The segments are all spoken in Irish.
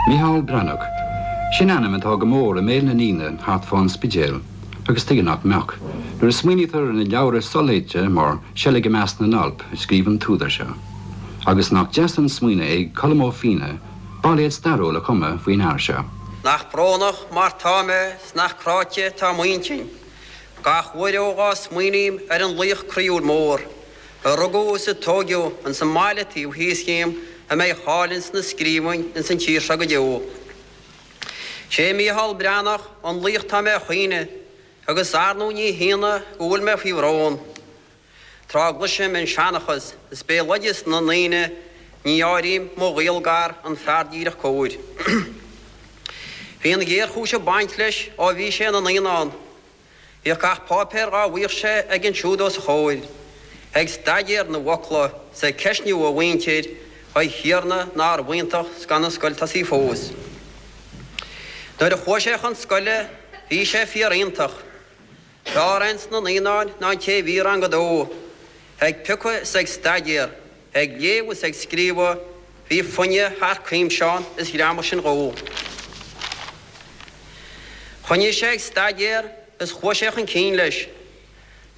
Mícheál Breathnach, sin ainm atá go mór i mbéal na ndaoine thart fá an Spidéal agus tuige nach mbeadh, nuair a smaoinítear ar na leabhra soléite mar Seilg i measc na nAlp a scríobh an t-údar seo. Agus nach deas an smaoineamh ag Colm Ó Finneadha bailéad stairiúil a chumadh faoin fhear seo. Nach brónach mar tá mé 's nach cráite atá m'intinn Gach uair ó dhá smaoiním ar an laoch croíúil mór, a rugadh is a tóigeadh ins an mbaile taobh thíos dhíom a mbeidh a cháil ins na scríbhinn ins an tír seo go deo. 'Sé Mícheál Breathnach an laoch atá mé a chaoineadh, agus ar ndú ní hionadh go bhfuil mé faoi bhrón, Tráth gcloisim an seanchas is béaloideas na ndaoine ní áirím mo ghaol gar an fear díreach cóir. Bhí an ghéarchúis ag baint leis ó bhí sé ina naíonán. Bhíodh gach páipéar dhá bhfaigheadh sé aige ansiúd os a chomhair, ag staidéar na bhfocla 's ag ceistniú a mhuintir a Thiarna nárbh iontach 's gan an scoil tosaithe fós. Nuair a chuaigh sé chun scoile bhí sé fíoriontach. B'fhearr é ins na naíonáin ná an té a bhí i rang a dó, ag piocadh 's ag staidéar Ag léamh is ag scríobhadh bhí foighne thar cuimse ann is ghreamaigh sin dhó. Choinnigh sé ag staidéar is chuaigh sé chun cinn leis.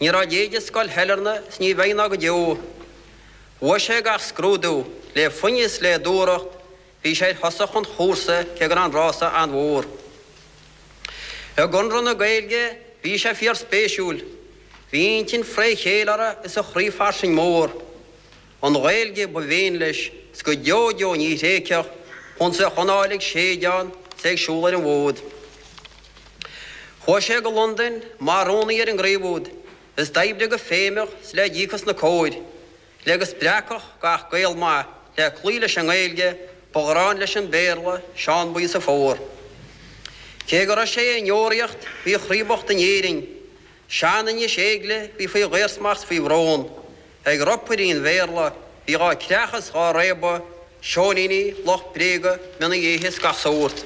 Ní raibh a leithéid i scoil Shailearna is ní bheidh ná go deo. Bhuaigh sé gach scrúdú le foighne is le dúthracht Bhí sé ar thosach an chúrsa cé go raibh an rása an-mhór. I gConradh na Gaeilge bhí sé fíorspéisiúil, bhí a intinn fré chéile orthu is a chroí fairsing mór. An Ghaeilge ba mhian leis, is go deo deo ní thréigfeadh chúns bheadh anáil ag séideadh ann is é ag siúl ar an bhfód. Chuaigh sé go Londain mar rúnaí ar an gcraobh úd, is d'oibrigh go feidhmeach is le díocas na cóir. Le go spreagfadh gach Gael maith le cloí leis an nGaeilge, ba ghráin leis an Béarla, Seán Buí 's a phór. Cé go raibh sé i ndeoraíocht, bhí a chroí bocht in Éirinn. Sean-Inis Éilge, bhí faoi dhaorsmacht 's faoi bhrón, Ag ropairí an Bhéarla, bhí dhá creachadh 's dhá réabadh, Seoiníní, lucht bréaga, mionnaí éithigh 's gach sórt.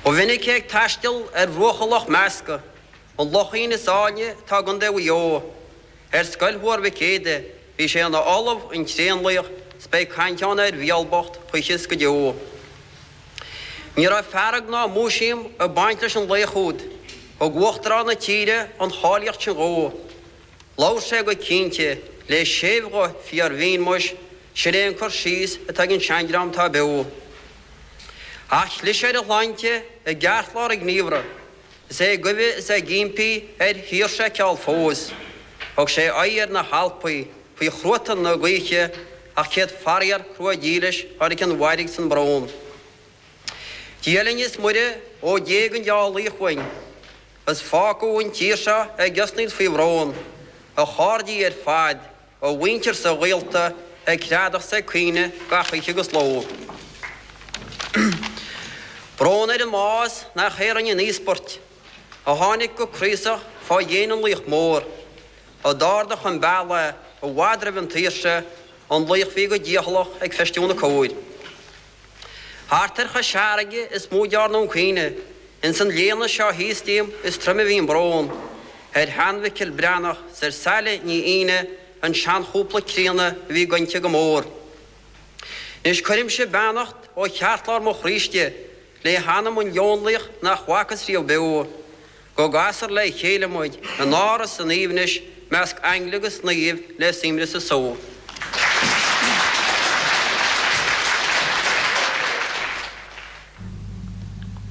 Ba mhinic é ag taisteal ar bhruacha Loch Measca. An Lochín is áilne atá i gContae Mhaigh Eo. Ar scoil Thuar Mhic Éadaigh bhí sé ina ollamh, an tréanlaoch, 's beidh caint ann ar Mhicheál bocht choíche 's go deo. Ní raibh fearg ná múisiam ag baint leis an laoch úd, thug Uachtarán na tíre an cháilíocht sin dhó. Labhair sé go cinnte, le séimh-ghuth fíor-bhinn, muis, sin é an cur síos atá ag an sean-dream atá beo. Ach chlis ar a shláinte i gceartlár a ghníomhra. Is é ag guibhe is é ag impí ar shaoirse ceall fós. Thug sé aghaidh ar na hAlpaí faoi chruatan na gaoithe ach céad faraor crua dílis tháinig an mhairg 's an brón. Dia linn is Muire ó d'éag an dea-laoch uainn agus fágadh an tír seo ag osnaíl faoi bhrón a chairde ar fad a mhuintir 's a ghaolta ag greadadh 's ag caoineadh gach oíche agus ló brón ar an mbás nach é rinne an íospairt, a tháinig go craosach fá dhéin an laoich mhóir, a d'ardaigh chun bealaigh i bhfad roimh an tsaoirse, an laoch a bhí go dícheallach ag feistiú na cóir. Thart ar Chois Fharraige is mó a dearnadh an caoineadh. Ins an léana seo thíos díom is troime a bhí an brón, ar Sheán Mhicil Breathnach 's ar Saile Ní Aoine, an seanchúpla críonna a bhí gointe go mór. 'Nois cuirimse beannacht ó cheartlár mo chroí istigh le hanam an leonlaoich nach bhfacas riamh beo. Go gcasfar le chéile muid in áras an aoibhnis measc aingle agus naoimh le suaimhneas is só.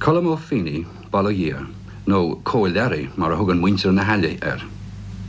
Colm Ó Finneadha, bail ó Dhia air, nó Cóil Learaí mar a thugann muintir na hAille air.